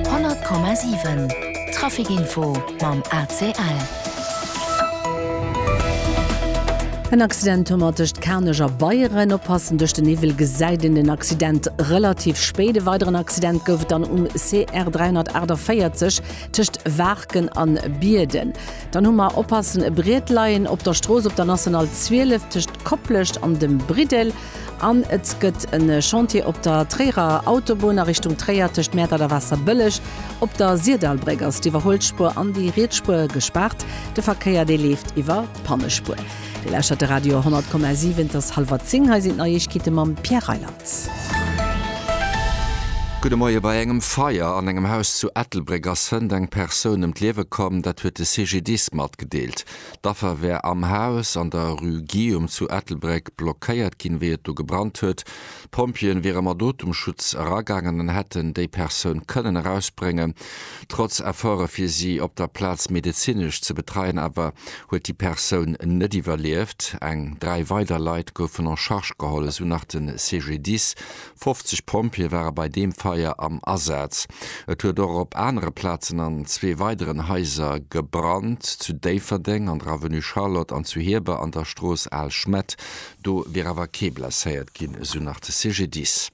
100,7 Trafic Info mam ACL. En Accident tommer tëscht Kanech a Beieren. Oppassen, duerch den Niwwel gesäit een den Accident relativ spéit. E weideren Accident gouf et dann um CR 348 tëscht Waarken a Bierden. Dann hu mer, oppassen, e Brietleien op der Strooss op der National 12 tëscht Koplescht an dem Briddel. An et gëtt e Chantier op der Tréierer Autobunn a Richtung Tréier tëscht Mäertert a Waasserbëlleg. Op der Sirdalbréck ass d'Iwwerhuelspuer an déi riets Spuer gespaart. De Verkéier, dee leeft iwwer d'Pannespuer. Dir lauschtert de Radio 100,7. Et ass hallwer zéng. Hei sinn d'Neiegkeete mam Pierre Reyland. Gudde Moie. Bei engem Feier an engem Haus zu Ettelbréck ass Sënnt eng Persoun ëm d'Liewe komm. Dat huet de CGDIS matgedeelt. D'Affer wär am Haus an der Rue Guillaume zu Ettelbréck blockéiert ginn, wéi et do gebrannt huet. D'Pompjeeën wiere mat Otemschutz eragaangen an hätten déi Persoun kënnen erausbréngen. Trotz Efforte fir si op der Plaz medezinesch ze betreien awer huet déi Persoun net iwwerlieft. Eng dräi weider Leit goufen en charge geholl, esou nach de CGDIS 50 Pompjeeë ware bei deem Feier am Asaz. Et huet och op anere Plazen an zwee weideren Haiser gebrannt, zu Déifferdeng an der Avenue Charlotte an zu Hieber an der Strooss Al Schmett. Do wier awer kee blesséiert ginn, esou nach de CGDIS.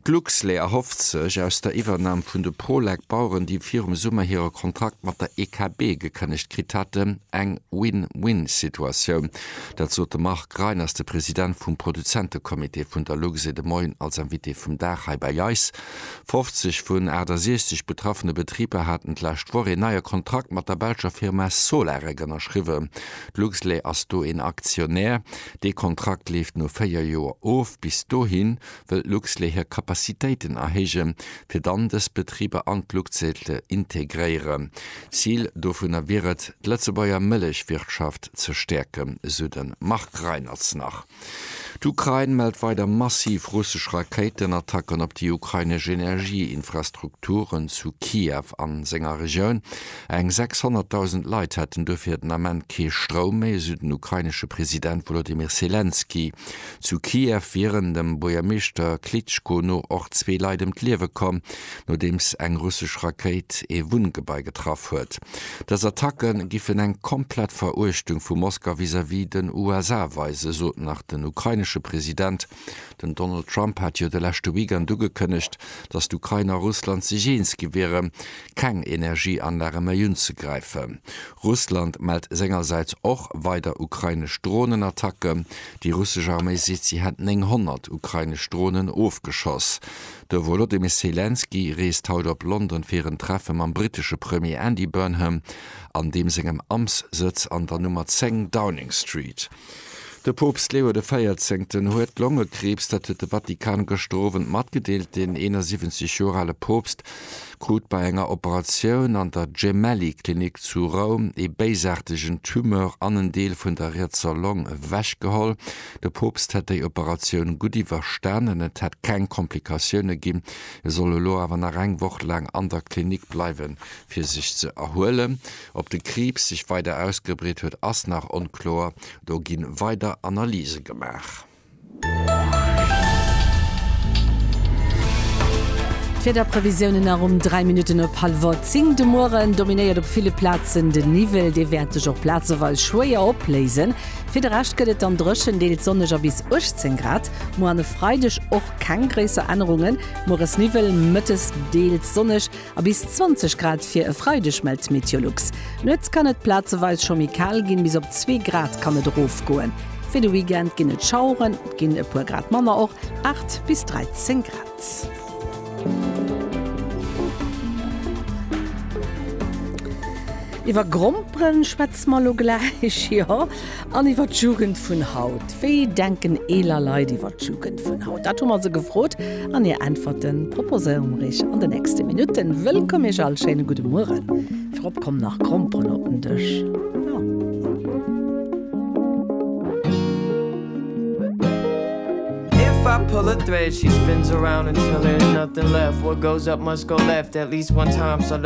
D'Luxlait erhofft sech aus der Iwwernam vun de Prolec Baueren, déi virum Summer hire Kontrakt mat der EKB gekënnegt kritt haten, eng Win-Win-Situatioun. Dat sot de Marc Reiners, de President vum Produzentecomité vun der Luxe de Moien als Invité vum Dag hei bei eis. 50 vun 68 betraffene Betriber haten d'lescht Woch een neie Kontrakt mat der belscher Firma Solarec ënnerschriwwen. D'Luxlait ass do een Aktionär. Dee Kontrakt leeft no 4 Joer of. Bis dohin wëll d'Luxlait hir Kapazitéiten erhéijen, fir dann dës Betriber an d'Luxlait ze integréieren. Zil dovunner wier et, d'Lëtzebuerger Mëllechwirtschaft ze stäerken, esou de Marc Reinertz nach. D'Ukrain mellt weider massiv russesch Rakéitenattacken op déi ukrainesch Energieinfrastrukturen zu Kiew a senger Regioun. Eng 600.000 Leit hätten dofir den Ament kee Stroum méi, esou den ukrainesche President Wolodymyr Selenskyj. Zu Kiew wieren dem Buergermeeschter Klitschko no och zwee Leit ëm d'Liewe komm, nodeems eng russesch Rakéit ee Wunngebai getraff huet. Dës Attacke giffen eng komplett Veruechtung vu Moskau vis-à-vis den USA weisen, sot nach den ukrainesche President. Den Donald Trump hat jo de leschte Weekend ugekënnegt, datt d'Ukrain a Russland sech eens gi wieren, keng Energieanlage méi unzegräifen. Russland mellt sengersäits och weider ukrainesch Dronenattacke. Déi russesch Arméi seet, si hätt 900 ukrainesch Dronen ofgeschoss. De Wolodymyr Selenskyj reest haut op London fir en Treffe mam brittesche Premier Andy Burnham an deem sengem Amtssëtz an der Nummer 10 Downing Street. De Poopst Leo de Véierzéngten huet Longekriibs, dat huet de Vatikan gëschter Owend matgedeelt. Deen 71 Joer ale Poopst krut bei enger Operatioun an der Gemelli Klinik zu Roum ee béisaartegen Tumeur an en Deel vun der rietser Long ewech geholl. De Poopst hätt déi Operatioun gutt iwwerstanen, et hätt keng Komplikatioune ginn. E soll elo awer nach eng Woch laang an der Klinik bleiwen, fir sech ze erhuelen. Ob de Kriibs sech weider ausgebreet huet, ass nach onkloer, do gi weider Analyse gemaach. D'Wiederprevisiounen nach um 3 Minutten op hallwer 10 de Mueren. Dominéiert op ville Plazen de Niwwel, dee wäert sech och plazeweis schwéier opléisen. Fir de Rescht gëtt et dann dréchen, deels sonneg a bis 18 Grad. Muer an e Freideg och keng gréisser Ännerungen, mueres Niwwel, mëttes deels sonneg. A bis 20 Grad fir e Freideg mellt d'Meteolux. Nuets kann et plazeweis scho méi kal ginn, bis op 2 Grad kann et erofgoen. Fir de Weekend ginn et Schaueren, et ginn e puer Grad manner, och 8 bis 13 Grad. Iwwer Gromperen schwätze mer elo gläich, jo. An iwwer d'Jugend vun haut, Wéi denken eeler Leit iwwer d'Jugend vun haut? Dat hu mer se gefrot an hir Äntwerten proposéiere mer iech an de nächste Minutten. Wëllkomm iech all, schéine gudde Mueren. Virop kommen nach Gromperen op den Dësch.